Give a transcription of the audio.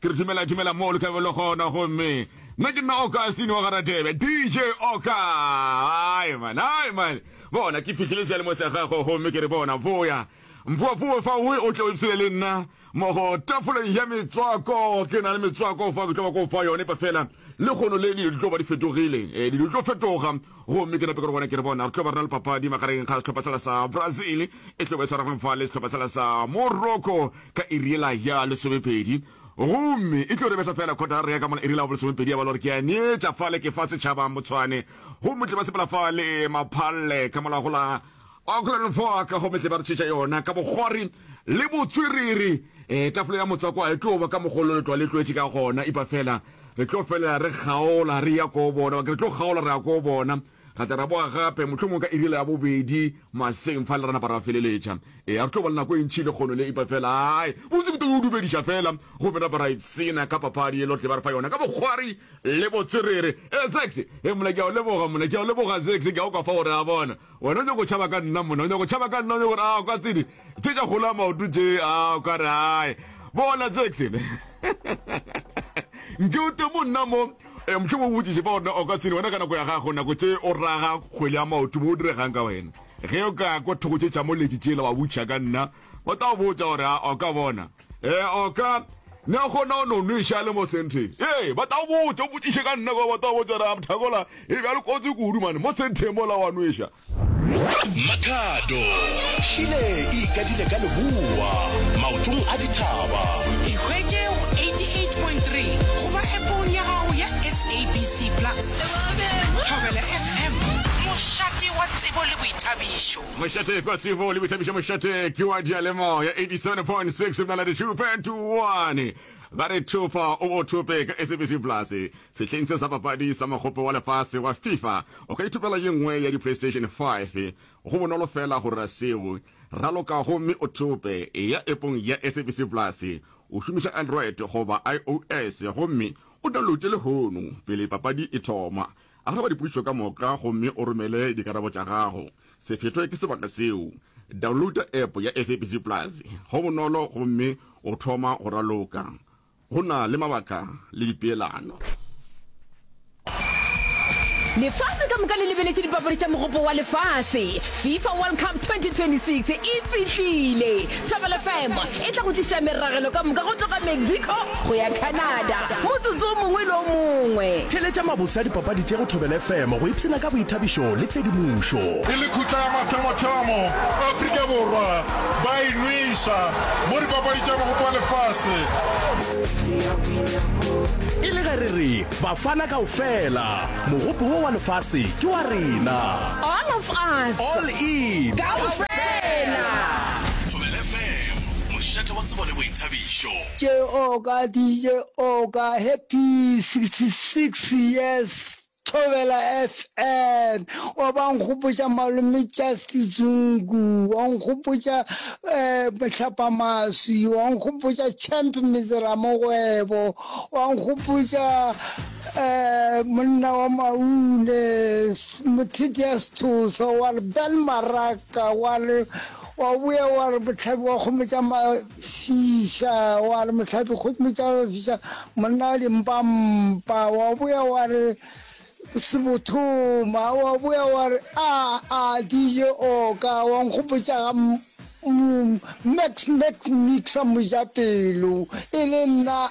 Ke re dumela dumela mo loka belo gona gomme nna ke nna Augustine wa Garadebe DJ Oka ai man ai man bona ke fihlile sealemo sa gago gomme ke re bona boya mpoa poe fa o o tle o ipsele le nna mo go tafoleng ya metswako ke na le metswako fa ke tlo ba ko fa yone pa fela le gono le dilo di tlo ba di fetogile eh, dilo di tlo fetoga Gomme ke nape ke re gona ke re bona re tlo ba rena le papadi magareng ga sehlopha sela sa Brazil e tlo ba e tshwaragweng fa le sehlopha sela sa Morocco ka iri yela ya lesomepedi gomme e tlo re betla fela kgotara re ya ka mona iri la bo lesomepedi ya ba le gore ke ya neetša fale ke fa setšhaba motshwane gomme tle ba sepela fale maphalle ka molagola Wa kgolwa le fo ka gomme tle ba re tšhetša yona ka bokgori le botswerere. Ee, tafole ya motswako a e tlo ba ka mogolo le tlwa le tlwetše ka gona, epa fela re tlo felela re kgaola re ya koo bona, re tlo kgaola re ya koo bona, ra tla ra boa gape mohlomongwe ka irila ya bobedi maseng fa le ra napa ra feleletša. Ee, a re tlo ba le nako e ntši le kgono le, epa fela ai, botse ke to yo dumediša fela gomme ra ba ra ipsena ka papadi ye lo tle ba re fa yona ka bokgori le botswerere. Ee, Zakes, ee, mola ke a o leboga, mola ke a o leboga, Zakes, ke a o kwa fa gore a bona. Wena o nyako tšhaba ka nna monna, o nyako tšhaba ka nna, o nyako gore a o ka tsedi tše tša kgolo ya maoto tše, a o ka re ae. Bona Jackson. Nke o te monna mo, e, mohlomong o botšiše fa gore o ka tsedi wena ka nako ya gago, nako tše o raga kgwele ya maoto mo o diregang ka wena. Ge o ka kwa thoko tše tša moletši tšela wa botšiša ka nna, ba tla go botša gore a o ka bona. e oka na gona o no nweša le mo senteng ee ba tao botsa o botsiše ka nna kwa ba tao botsa ra thakola e bja le kotsi kudu mane mo senteng mola wa nweša mathado šile e ikadile ka leboa maotong a dithaba ikgwetše go 88.3 goba epong ya gago ya sabc plus thobela fm mošate wa tsebo le boithabišo Mošate kwa tsebo le boithabišo mošate ke wa diyalemoya 87.6 mnaladi 2.1 ba re thopa o bo thope ka sabc plus sehleng se sa papadi sa mogope wa lefase wa fifa o ka ithopela ye nngwe ya di-playstation 5 go bonolo fela go rera seo ralokago mme o thope ya epong ya sabc plus o šomiša android goba ios gomme o downloade lehono pele papadi e thoma Araba dipotšišo ka moka gomme o romele dikarabo tša gago. Sefeto ke sebaka seo. Downloada app ya SABC Plus go bonolo gomme o thoma go raloka. Go na le mabaka le dipeelano. Lefase ka moka le lebeletše dipapadi tša Mogopo wa Lefase. Fifa World Cup 2026 e fihlile! Thobela FM e tla go tliša meragelo ka moka go tloga Mexico go ya Canada motsotso o mongwe le o mongwe. Theletša mabose a dipapadi tše go Thobela FM go ipshina ka boithabišo le tshedimošo. E le khutla ya mathomo-thomo, Afrika Borwa ba e nweša mo dipapadi tša Mogopo wa Lefase. E le ge re re Bafana kaofela Mogopo wo wa lefase ke wa rena. All of us. All in. Kaofela. Thobela FM, mošate wa tsebo le boithabišo. Tše o ka DJ o ka happy 66 years Thobela FM o ba nkgopotša malome Justice Zungu wa nkgopotša um Mohlapa Maswi wa nkgopotša Champ Mizera Mogwebo wa nkgopotša Monna wa maune, motheti ya sethosa, wa re bel maraka, wa re wa boya wa re motlhabi wa kgomo tša mafisa, wa re motlhabi kgomo tša mafisa, monna wa dimpampa, wa boya wa re sebothoma, wa boya wa re a a dije oka, wa nkgopotša ga max max mixa mojapelo e le nna